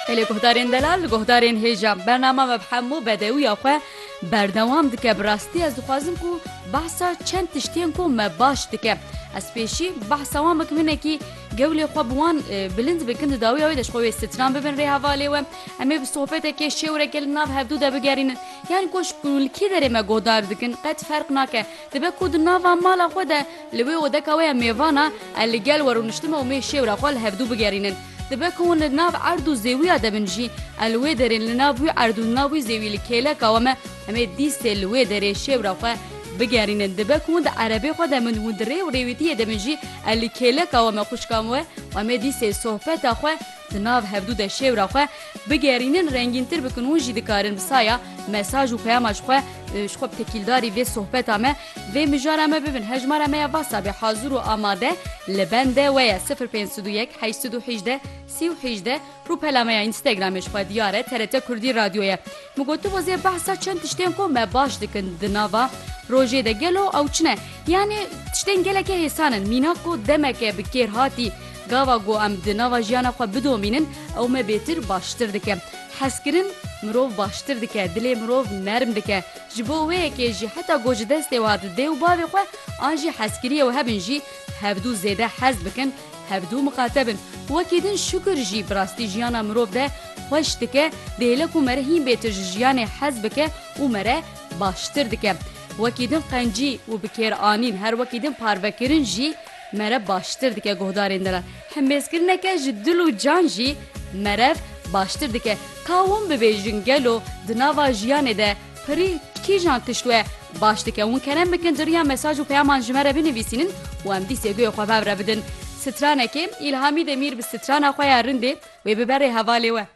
Gelê guhdarên delal li guhdarên hêja bernama me bi hemû bedewiya xwe berdewam dike bi rastî ez dixwazim ku behsa çend tiştên ku me baş dike ez pêşî behsa wan bikim hinekî gewlê xwe bi wan bilind bikin di dawiya wê de ji xwe wê stran bibin rê hevalê we em ê bi sohbetekê şêwreke li nav hevdû de bigerînin yan ku ji ku li kî derê me guhdar dikin qet ferq nake dibe ku di nava mala xwe de Li wê odeka wê ya mêvan a ez li gel we rûniştime û mê şêwra xwe li hevdu bigerînin. Dibe ku hûn li nav erd û zêwiya de bin jî, ez li wê derê li nav wî erd û li nav wî zêwî li kêleka we me, em ê dîstê li wê derê şêwra xwe bigerînin. Dibe ku hûn di erebê xwe de bin û di rê û rêwîtiyê de bin jî, ez li kêleka we me xwişka we û em ê dîstê sohbeta xwe di nav hevdu de şêwra xwe bigerînin, rengîntir bikin. Hûn jî dikarin bi saya mesaj û peyama ji xwe ji xwe bi tekîldarî vê sohbeta me, Vê mijara me bibin hejmara me ya WhatsAppê hazir û amade li bende we ye sifir pênc sed û yek heşt sed û hîjdeh sî û hîjdeh Rûpela me ya Instagramê ji xwe diyar e TRT Kurdî Radyo ye. Min gotibo zê behsa çend tiştên ku me baş dikin di nava rojê de gelo ew çin e. Yanî tiştên gelekê hêsan in. Mîna ku demeke bi kêr hatî gava ku em di nava jiyana xwe bidomînin ew me bêtir baştir dike. Hezkirin mirov baştir dike, dilê mirov nerm dike. Ji bo wê yekê jî heta ku ji destê we hate dê û bavê xwe an jî hezkirî ew hebin jî hevdû zêde hez bikin, hevdû miqate bin. Wekî din şukir jî bi rastî jiyana mirov de xweş dike, dihêle ku mere hîn bê tu ji jiyanê hez bike û mere baştir dike. Wekî din qencî û bi kêranîn her wekî din parvekirin jî mere baştir dike guhdarên din re. Hembêzkirineke ji dil û can jî merev baştir dike. Ka win bibêjin gelo di nava jiyanê de pirî kîjan tişt we baş dike? Win kerem bikin di riya mesaj û peyaman ji me re binivîsînin û em dîsê guhê xwe bev re bidin. Stranekê, Îlhamî Demîr bi strana xwe ya rindê wê bibe rê hevalê we.